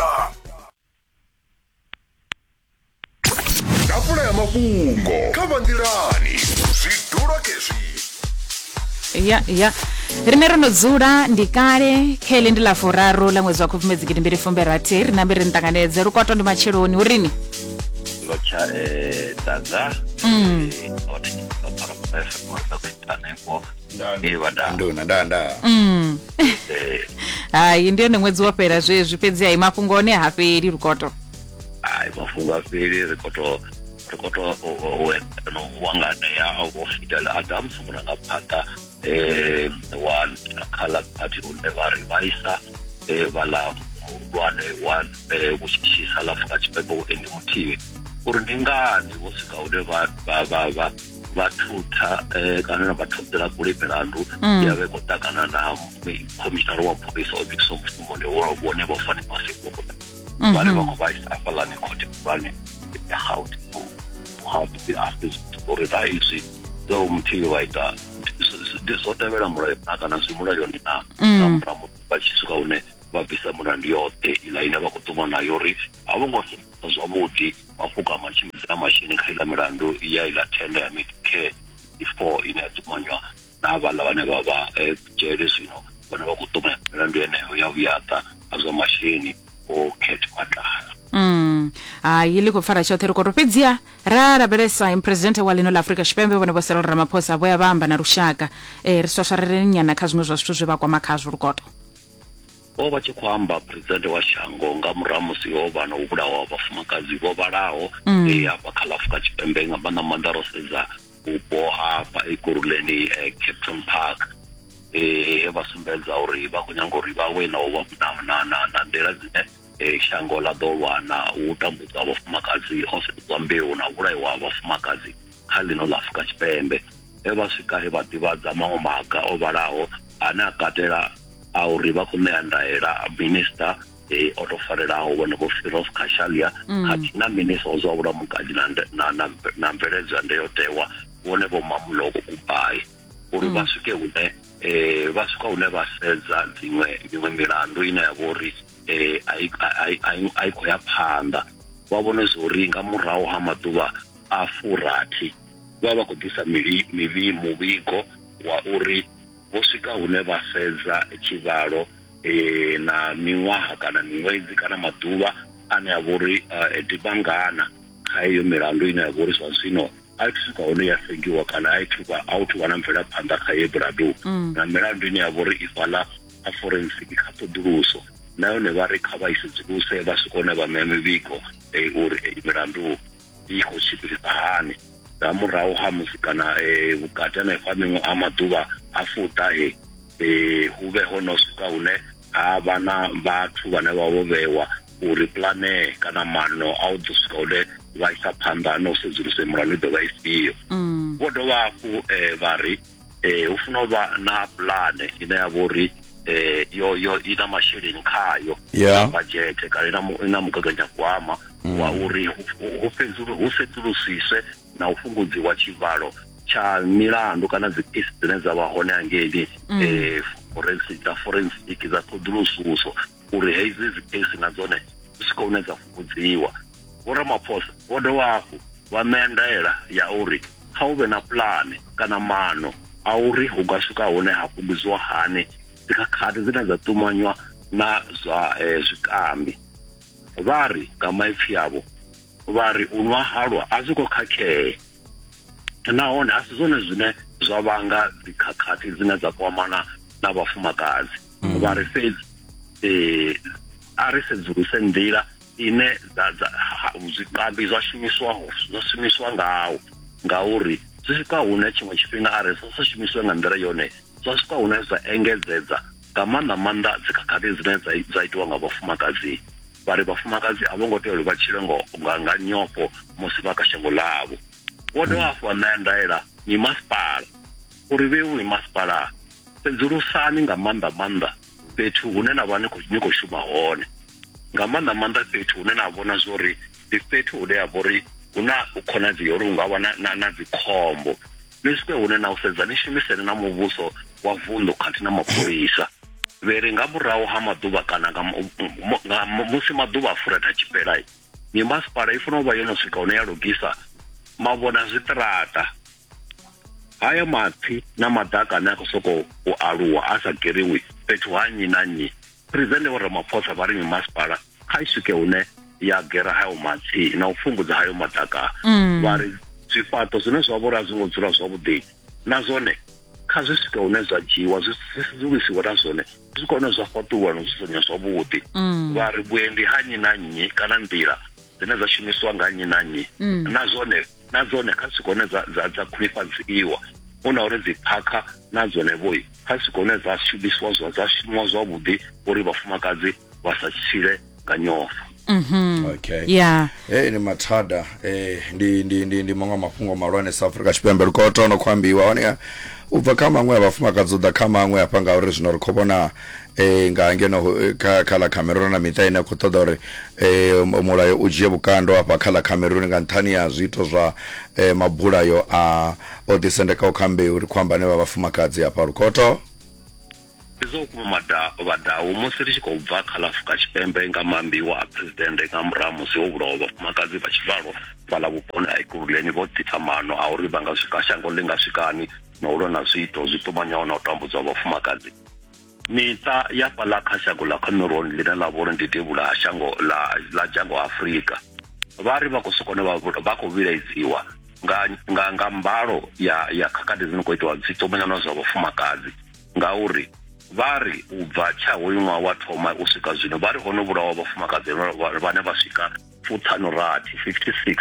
Star. Tafula ya mafhungo kha vanḓilani zwidulo khezwi. ya ya rine ro no dzula ndi kale kha ili ndi ḽa furaru ḽa ṅwedzi wa khubvumedzi gidi mbili fumbe rathi ri nambe ri ni ṱanganedze lukwato ndi matsheloni hu rini ngo tsha eh, ḓadza Mm. Eh, hone ndi ḓo ṱhora muthu a songo ḓa ku ita hanefho Eh, vhadaa nduna nda nda Mm. Eh, hayi ndi yone ṅwedzi wo fhela zwezwi fhedzi hayi mafhungo one ha fheli lukoto ai mafhungo a fheli ri khou tou ri khou tou u- u- u eḓana u wanganea a vho fidel adams murangaphanḓa um wa khala party une vha ri vhaisa um vhaḽa muhulwane wa eh, vhutshitshisa ḽa afrika tshipembe u endi muthihi uri ndi ngani vho swika hune vha vha vha vha vha thutha eh, kana na vha ṱhoḓela kule milandu mm. ya vhe khou ṱangana na khomishinara wa pholisa o bikisa mushumoni wone vho fane masekuno mhm. vhane vha khou vhaisa afhaḽani khothe khulwane ya gaute hape after uri ra izwi zwa umthili wa ita ndi zwo tevhela mulayo na kana zwi mulayoni na mm. nga murahu vha tshi swika hune vha bvisa mulandu yoṱhe ila ine vha khou ṱuma nayo uri a vho ngo zwavhuḓi wa fukama a tshimbidza na masheleni kha iḽa milandu ya iḽa thenda ya medicare before ine ya ṱumanywa na havhaḽa vhane vha vha eh, dzhele zwino vhane vha khou ṱumanya milandu yeneyo ya vhuyaḓa ha zwa masheleni o cat madala Mm. hayi ḽi khou pfara tshoṱhe ri koro fhedziha ra lavhelesa im presidente wa ḽino ḽa afurika tshipembe vhone vho serol ramaphosa vho ya vha amba na lushaka um ri swaswareleni nyana kha zwiṅwe zwa zwithu zwe vha kwama khazwo lukoto o vha tshi khou amba presidente wa shango nga murahu musi ho vha na u vhulawa ha vhafumakadzi vho vhalaho mm. e hafha kha ḽa afurika tshipembe nga maanḓa maanḓa ro sedza vhupo hafha ekuruleni e, capton park e, he vha sumbedza uri vha khou nyanga uri vha we na u na na nḓila dzine e, shango ḽa ḓo lwa na u tambudzwa vhafumakadzi ho sedzwa mbeu na vhulaiwa ha vhafumakadzi kha ḽino ḽa Afurika Tshipembe he vha swika he vha ḓivhadza maṅwe maga o vhalaho ane a katela a uri vha khou ṋea ndaela minista e o tou farelaho vhonevho Firoz Khashalia mm. khathihi na minista wa zwa vhulamukati na mveledzo ya ndayotewa vhonevho Mamuloko Kubai uri vha mm. swike hune um vha swika hune vha sedza dziṅwe miṅwe milandu ine ya vha uri um a i khou ya phanḓa vha vhone zwa uri nga murahu ha maḓuvha a furathi vha vha khou ḓisa mivhi muvhigo wa uri vho swika hune vha fhedza tshivhalo e, na miṅwaha kana miṅwedzi kana maḓuvha ane a vha uri e, dibangana kha iyo milandu ine ya vha uri zwa zwino a i swika hone ya sengiwa kana a ithuva a u thuvha na mvelaphanḓa kha ye buladu mm. na milandu ine ya vha uri ifhaḽa a forensic kha ṱhoḓuluso na yone vha ri kha vha i sedzuluse vha swika hone vha ṋea mivhigo e, uri milandu i khou tshimbilisa hani nga murahu ha musi kana um vhukati hanefha miṅwe ha maḓuvha a fuṱa e um hu vhe ho no swika hune ha vha na vhathu vhane vha vho vhewa uri pulane kana mano a u ḓo swika hune vha isa phanḓa na u sedzulusa mulandu i ḓo vha ifhio mm. vho dovha hafhu um vha ri eh hu funa u vha na pulane ine ya vha uri eh yo yo i na masheleni khayo yeah. bajete kana ina ina mugaganyagwama mm. wa uri hu fhedzulu hu sedzulusiswe na u fhungudziwa tshivhalo tsha milandu kana dzi case dzine dza vha hone hangeini mm. eh forensic dza forensic dza ṱhoḓulususo uri hedzi dziphesi na dzone dzi swika hune dza fhungudziwa vho ramaphosa vho dovha hafhu vha ṋea ndaela ya uri kha hu vhe na pulane kana mano a uri hu nga swika hune ha fhungudziwa hani dzikhakhathi dzine dza ṱumanywa na zwa eh, zwikambi vha ri nga maipfi avho vha ri u nwa halwa a zwi khou khakhea nahone a si zwone zwine zwa vhanga dzikhakhathi dzine dza kwamana na vhafumakadzi mm. vha ri fhedzi eh a ri sedzuluse nḓila ine dza dza zwikambi zwa shumiswaho zwa shumiswa ngawo ngauri zwi swika hune tshiṅwe tshifhinga a ri sa shumiswe nga nḓila yone zwa swika hune zwa engedzedza nga maanḓa maanḓa dzikhakhathi dzine dza itiwa nga vhafumakadzi vha ri vhafumakadzi a vho ngo tea uri vha tshile nga nga nyofho musi vha kha shango ḽavho vho dovha hafhu vha ṋea ndaela mimasipala uri vheu mimasipala Sedzulusani nga maanḓa maanḓa fhethu hune na vha ni khou ni khou shuma hone nga maanḓa maanḓa fhethu hune na vhona zwori ndi fhethu hune ha vha uri hu na u khonadzeo uri hu nga vha na na na dzikhombo ni swike hune na u sedza ni shumisene na muvhuso wa vunḓu khathihi na mapholisa vhele nga murahu ha maḓuvha kana nga nga musi maḓuvha a furatha tshifhela mimasipala i fanela u vha yo no swika hune ya lugisa mavhona zwiṱaraṱa haya mapfi na maḓaka ane a khou sokou u aluwa a sa geriwi fhethu ha nnyi na nnyi presente vho ramaphosa vha ri mimasipala kha i swike hune ya gera hayo mapfi na u fhungudza hayo maḓaka mm. vha ri zwifhaṱo zwine zwa vhori a zwi ngo dzula zwavhuḓi na zwone kha zwi swike hune zwa dzhiiwa zwi sedzulusiwe na zwone zwi kone zwa fhaṱulwa no dzudzanya zwavhuḓi mm. vha ri vhuendi ha nnyi na nnyi kana nḓila dzine dza shumisiwa nga nnyi na nnyi mm. na zwone na dzone kha swika hune dza dza dza khwinifhadziwa hu na uri dzi phakha na dzone vhoi kha swika hune dza shumisiwa zwa dza shumiwa zwavhuḓi uri vhafumakadzi vha sa tshile nga nyofho okay ya hey, ni mathada eh, ndi, ndi, ndi, ndi maṅwe a mafhungo malwane sa afrika tshipembe ri khou tona khou ambiwa hone u bva kha maṅwe a vhafumakadzi u ḓa kha maṅwe hafha ngauri zwino ri khou vhona eh, nga ngeno eh, kha kha ḽa cameron na miṱa ine a khou ṱoḓa uri eh, mu- mulayo u dzhie vhukando afha kha ḽa cameron nga nṱhani ya zwiito zwa eh, mabulayo a o ḓisendekaho kha mbeu ri khou amba ane vha vhafumakadzi afha lukhoto ndi zwa vhukuma mada- vhadau musi ri tshi khou bva kha ḽa afurika tshipembe nga mambiwa a phuresidennde nga murahu musi ho vhulawa vhafumakadzi vha tshivhalo fhala vhuponi ha ikuruleni vho ḓisa maano a uri vha nga swika shango ḽi nga swikani na u lwa na zwiito zwi ṱumanyaho na u tambudzwa ha vhafumakadzi Miṱa ya fhaḽa kha shango ḽa Cameroon ḽine ḽa vha uri ndi devhula ha shango ḽa ḽa dzhango Afrika vha ri vha khou sokona vha vha khou vhilaedziwa nga nga nga mbalo ya ya khakhathi dzi no khou itiwa dzi ṱumanyana zwa vhafumakadzi ngauri vha ri u bva tsha hoyu ṅwaha wa thoma u swika zwino vha ri ho no vhulawa vhafumakadzi vhane vha swika fuṱhanu rathi 56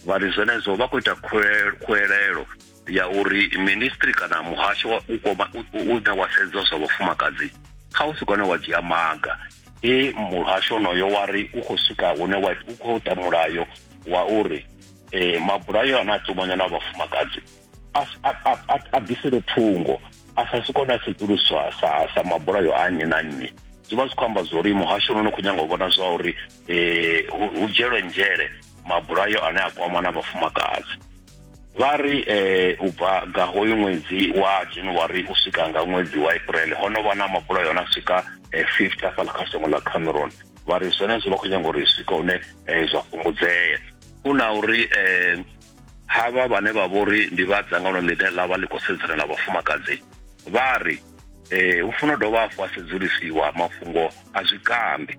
vha ri zwenezwo vha khou ita khuwelelo ya uri ministry kana muhasho wa u koma u ita wa sedza zwa vhafumakadzi kha u si kone wa dzhia maga e muhasho onoyo wa ri u khou swika hune wa u khou ta mulayo wa uri eh mabulayo ana tumanya na vhafumakadzi a bvisele thungo a sa si kone a sedzuluswa sa sa mabulayo a nnyi na nnyi zwi vha zwi khou amba zwa uri muhasho no no khou nyanga u vhona zwa uri eh, hu dzhielwe nzhele mabulayo ane a kwama na vhafumakadzi vha ri eh, u bva nga hoyu ṅwedzi wa january u swika nga ṅwedzi wa april ho no vha na mabulayo na swika eh, 50 afhala kha shango ḽa cameron vha ri zwenezwo vha khou nyanga uri swika hune eh, zwa fhungudzea hu na uri eh, havha vhane vha vhori ndi vha dzangano ḽine ḽa vha ḽi khou sedzana na vhafumakadzi vha ri eh, hu funa dovha hafhu a sedzulisiwa mafhungo a zwikambi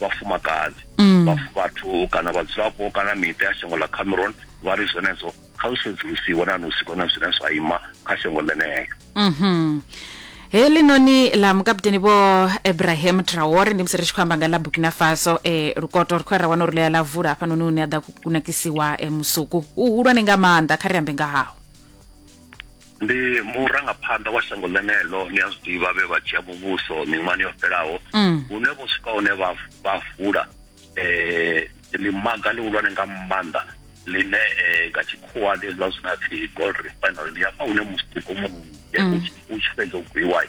vhafumakadzi mm. vhathu kana vhadzulapo kana miṱa ya shango ḽa cameron vha ri zwenezwo kha zwi sedzulusiwe na nusi kone zwine zwa ima kha shango ḽeneyo mhm. heḽi noni ḽa mukaputeni vho abraham traore ndi musi ri tshi khou amba nga ḽa burkina faso e lukoto ri khou ra wana uri ḽia ḽa vula hafhanoni une a ḓa kunakisiwa e, musuku u hulwane nga maanḓa kha ri ambe nga hawo ndi murangaphanḓa wa shango ḽeneḽo ni a zwi ḓivha vhe vha dzhia muvhuso miṅwahani yo fhelaho mm. hune vho swika hune vha vha vula eh ḽimaga ḽihulwane nga maanḓa ḽine eh, nga tshikhuwa ndi hezwiḽa zwine apfi gold refinery ndi hafha hune musituko mu eh, mm. u tshi fhedza u gwiwa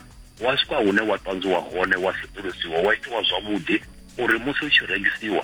wa swika hune wa ṱanzwiwa hone wa sedzulusiwa wa itiwa zwavhuḓi uri musi u tshi rengisiwa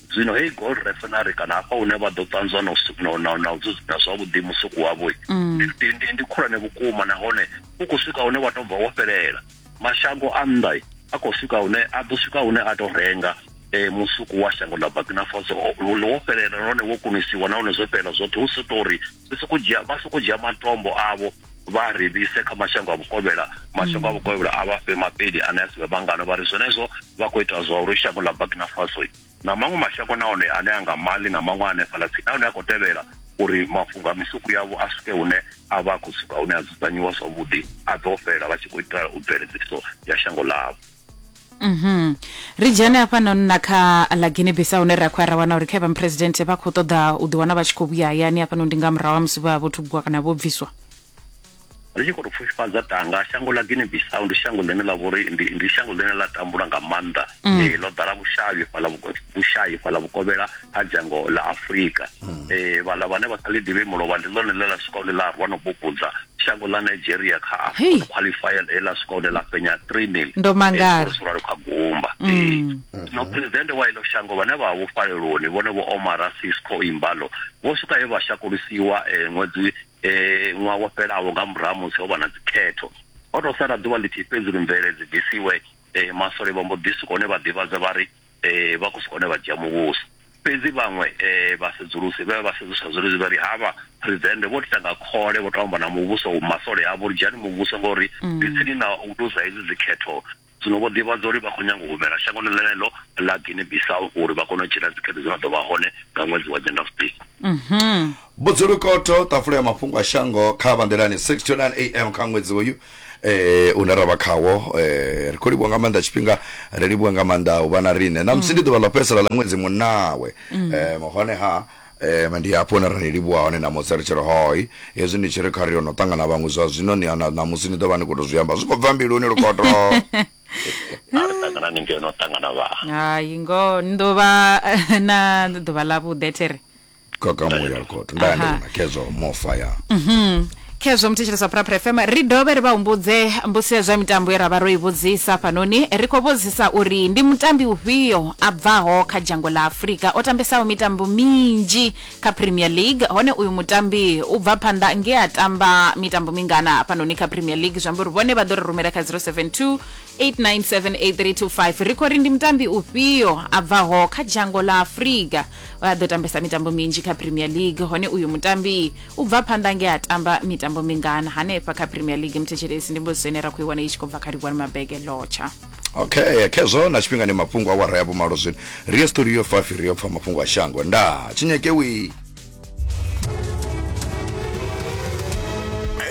Zwino heyi gold refinery kana hafha hune vha ḓo ṱanzwa na u na na u dzudzanya zwavhuḓi musuku wavho mm. ndi ndi ndi khulwane vhukuma nahone u khou swika hune wa tou bva wo fhelela mashango a nnḓa a khou swika hune a ḓo swika hune a tou renga eh musuku wa shango ḽa Burkina Faso wo fhelela nahone wo kunisiwa nahone zwo fhelela zwoṱhe hu si tori ri soko dzhia vha soko dzhia matombo avho vha ri vhise kha mashango a vhukovhela mashango a vhukovhela a vha fhe mapeli ane a si vhe vhangano vha ri zwenezwo vha khou ita zwa uri shango ḽa burkina faso na maṅwe mashango nahone ane a nga mali na maṅwe ane fhala tsini nahone a khou tevhela uri mafhungo a misuku yavho a swike hune a vha a khou suka hune a dzudzanyiwa zwavhuḓi a ḓo fhela vha tshi khou itela u bveledziso ya shango ḽavho Mhm. Ri dzhene hafha noni na kha ḽa Guinea Bissau hune ra khou ya ra wana uri kha vha president vha khou ṱoḓa u ḓiwana vha tshi khou vhuya hayani hafha noni ndi nga murahu ha musi vha vho thubwa kana vho bviswa. ri tshi khou tou pfufhifhadza tanga shango ḽa guinea bissau ndi shango ḽine ḽa vhori ndi, ndi shango ḽine ḽa tambula nga maanḓa mm. eh, ḽo ḓala vhushayi fhala vhushayi fhala vhukovhela ha dzhango ḽa afurika mm. eh, vhala vhane vha sa ḽi ḓivhe mulovha ndi ḽone ḽe ḽa swika hune ḽa rwa no bubudza shango ḽa nigeria kha afcon qualifier ḽe ḽa swika hune ḽa fhenya 3 mil ndo mangala ralo kha gumba mm. zwino presidente wa ilo shango vhane vha vho faleloni vhone vho omara sisco imbalo vho swika he vha shakulisiwa eh, ṅwedzi eh, ṅwaha wo fhelaho nga murahu musi ho vha na dzikhetho ho tou sala ḓuvha ḽithihi fhedzi uri mvelele dzi bvisiwe eh, masole vha mbo ḓi swika hone vha ḓivhadza vha ri eh vha khou swika hone vha dzhia muvhuso fhedzi vhaṅwe eh vha sedzulusi vha vha sedzulusa zwenezwi vha ri havha president vho ita nga khole vho to amba na muvhuso u masole avho ri dzhiani muvhuso ngori mm. ndi tsini na u luza hedzi dzikhetho zwino vho ḓivhadza uri vha khou nyanga u humela shangoni ḽeneḽo ḽa guinea bissau uri vha kone u dzhena dzikhetho dzi na ḓo vha hone nga ṅwedzi wa nyendavhusiku mhm. Budzulukoto, Ṱafula ya mafhungo a shango kha vha nḓilani 6 to 9 am kha ṅwedzi uyu eh une ra vha khawo eh ri khou livhuwa nga maanḓa tshifhinga ri livhuwa nga maanḓa u vha na riṋe na musi ndi ḓuvha ḽo fhedzisela ḽa ṅwedzi munawe eh hone ha eh ndi hafho hune ra ni livhuwa hone na musi ri tshi ri hoi hezwi ni tshi ri kha ri yo no ṱangana vhaṅwe zwa zwino ni na na musi ni ḓo vha ni khou tou zwi amba zwi khou bva mbiluni lukoto a ri ṱangana ni ngeno ṱangana vha hai ngoho ni ḓo vha na ḓuvha ḽavhuḓi a thi ri gogo muya lukoto nda ndi Aha. na kezo mofa ya khezwo muthetshelesi wa phuraphura fm ri dovhe ri vha humbudze mbusi ya zwa mitambo ye ra vha ro i vhudzisa hafhanoni ri khou vhudzisa uri ndi mutambi ufhio a bvaho kha dzhango ḽa afurika o tambesaho mitambo minzhi kha premier league hone uyu mutambi u bva phanḓa nge a tamba mitambo mingana hafhanoni kha premier league zwi amba uri vhone vha ḓo ri rumela kha 072 8978325 ri khou ri ndi mutambi ufhio a bvaho kha dzhango ḽa afurika a ḓo tambesa mitambo minzhi kha premier league hone uyu mutambi u bva phanḓa nge a tamba mitambo mingana hanefha kha premier league muthetshelesi ndi mbudziso ine ra khou i wana i tshi khou bva kha livhuwani mabege lotsha okay khezwo na tshifhingani mafhungo awara ya vhumalo zwino ri ye studio 5 ri yo pfa mafhungo a shango ndaa tshinyekewii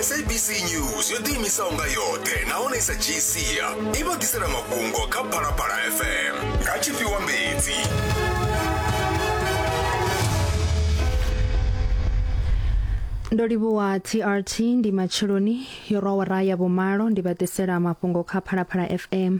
sabc news yo ḓiimisaho nga yoṱhe nahone i sa dzhii sia i vha ḓisela mafhungo kha phalaphala fm nga tshifhiwa mbedzi ndo livhuwa trt ndi matsheloni yo rwa wara ya vhumalo ndi vha ḓisela mafhungo kha phalaphala fm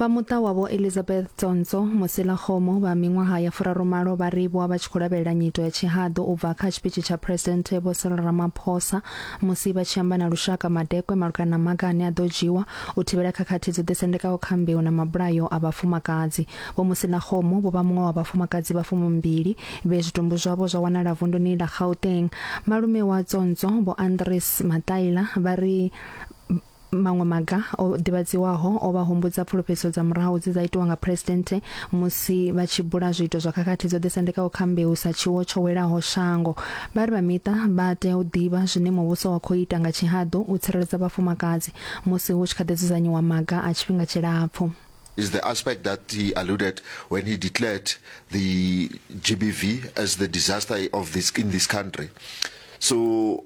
Vha muṱa wa Vho Elizabeth Tsonso Mosela-Kgomo vha miṅwaha ya furarumalo vha livhwa vha tshi khou lavhelela nyito ya tshihaḓu u bva kha tshipitshi tsha Phresidennde Vho Cyril Ramaphosa musi vha tshi amba na lushaka madekwe malugana na maga ane a ḓo dzhiwa u thivhela khakhathi dzo ḓisendekaho kha mbeu na mabulayo a vhafumakadzi. Vho Mosela-Kgomo vho vha muṅwe wa vhafumakadzi vha fumimbili vhe zwitumbu zwavho zwa wanala vunduni ḽa Gauteng. Malume wa Tsonso Vho Andries Mataila vha ri Maṅwe maga o ḓivhadziwaho o vha humbudza pfulufhedziso dza murahu dze dza itiwa nga Phresidennde musi vha tshi bula zwiito zwa khakhathi dzo ḓisendekaho kha mbeu sa tshiwo tsho welaho shango. Vha ri vha miṱa vha tea u ḓivha zwine muvhuso wa khou ita nga tshihaḓu u tsireledza vhafumakadzi musi hu tshi kha ḓi dzudzanyiwa maga a tshifhinga tshilapfu. is the aspect that he alluded when he declared the GBV as the disaster of this in this country. So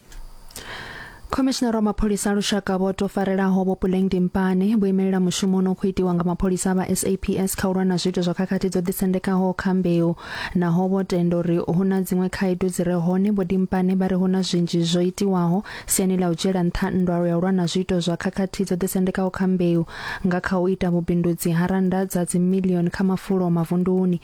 khomishinara wa mapholisa a lushaka vho to farelaho vho puleng dimpane vho imelela mushumo ono khou itiwa nga mapholisa vha saps kha u lwa na zwiito zwa khakhathi dzo ḓisendekaho kha mbeu naho vho tenda uri hu na dziṅwe khaedu dzi re hone vho dimpane vha ri hu na zwinzhi zwo itiwaho siani ḽa u dzhiela nṱha nndwalo ya u lwa na zwiito zwa khakhathi dzo ḓisendekaho kha mbeu nga kha u ita vhubindudzi ha rannda dza dzimilioni kha mafulo mavunduni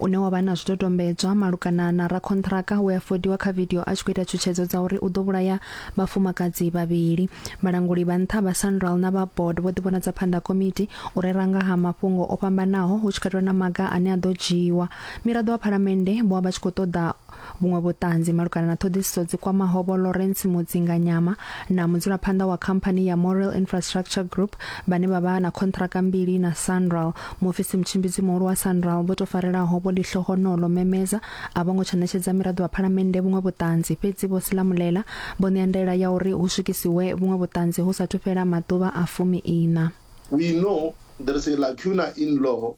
une wa vha na zwidodombedzwa malugana na rakhonṱhiraka we a fodiwa kha vidio a tshi khou ita tshutshedzo dza uri u ḓo vhulaya vhafumakadzi vhavhili. Vhalanguli vha nṱha vha Sanral na vha board vho ḓivhonadza phanḓa ha komiti u rera nga ha mafhungo o fhambanaho hu tshi katelwa na maga ane a ḓo dzhiiwa. Miraḓo wa Phalamennde vho vha vha tshi khou ṱoḓa Vhuṅwe vhuṱanzi malugana na ṱhoḓisiso dzi kwamaho vho Lawrence Mudzinganyama na mudzulaphanḓa wa khamphani ya Morel Infrastructure Group vhane vha vha na khontraka mbili na Sanral. Mufisi mutshimbidzi muhulu wa Sanral vho to farelaho vho Lihloho Nolo Memeza a vho ngo tsha ṋetshedza miraḓo wa phalamennde vhuṅwe vhuṱanzi fhedzi vho Silamulela vho ṋea ndaela ya uri hu swikisiwe vhuṅwe vhuṱanzi hu sa thu fhela maḓuvha a fumi ina. We know there is a lacuna in law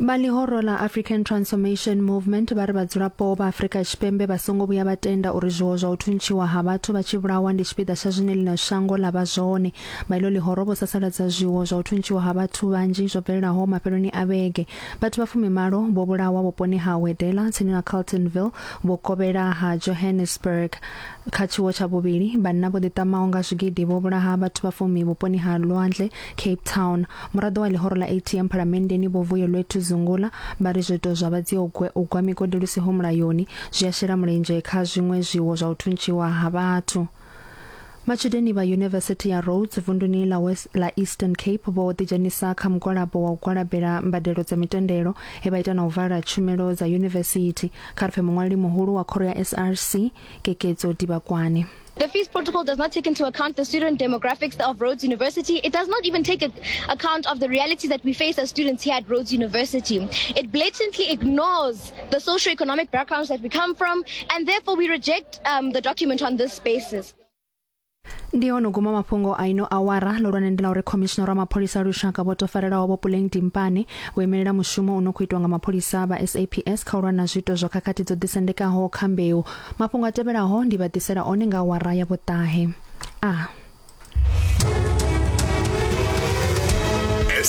vha ḽihoro ḽa african transformation movement vha ri vhadzulapo vha afrika tshipembe vha songo vhuya vha tenda uri zwiwo zwa u thuntshiwa ha vhathu vha tshi vhulawa ndi tshipiḓa tsha zwine ḽino shango ḽa vha zwone vha ilo ḽihoro vho sasaladza zwiwo zwa u thuntshiwa ha vhathu vhanzhi zwo bvelelaho mafheloni a vhege vhathu vha fumimalo vho vhulawa vhuponi ha wedela tsini na carltonville vho kovhela ha johannesburg kha tshiwo tsha vhuvhili vhanna vho ḓiṱamaho nga zwigidi vho vhulaha vhathu vha fumi vhuponi ha lwandle Cape Town, muraḓo wa ḽihoro ḽa ATM phalamenndeni Vho Vuyelwethu Zungula vha ri zwiito zwa vhadziogwe u gwa migodi lu siho mulayoni zwi a shela mulenzhe kha zwiṅwe zwiwo zwa u thuntshiwa ha vhathu. Matshudeni vha Yunivesithi ya Rhodes vunduni ḽa West ḽa Eastern Cape vho ḓidzhenisa kha mugwalabo wa u gwalabela mbadelo dza mitendelo he vha ita na u vala tshumelo dza yunivesithi kha ri pfe muṅwaleli muhulu wa khoro ya SRC Kekedzo Dibakwane. The fees protocol does not take into account the student demographics of Rhodes University. It does not even take account of the reality that we face as students here at Rhodes University. It blatantly ignores the socio-economic backgrounds that we come from, and therefore we reject um, the document on this basis. ndi ono guma mafhungo a ino awara lolwane ndi la uri khomishinara wa mapholisa a lushaka vho tofarelaho vho puleng dimpane vho imelela mushumo u no khou itwa nga mapholisa vha saps kha u lwa na zwiito zwa khakhathi dzo ḓisendekaho kha mbeu Mafhungo a tevhelaho ndi vha ḓisela one nga awara ya vhuṱahe. A.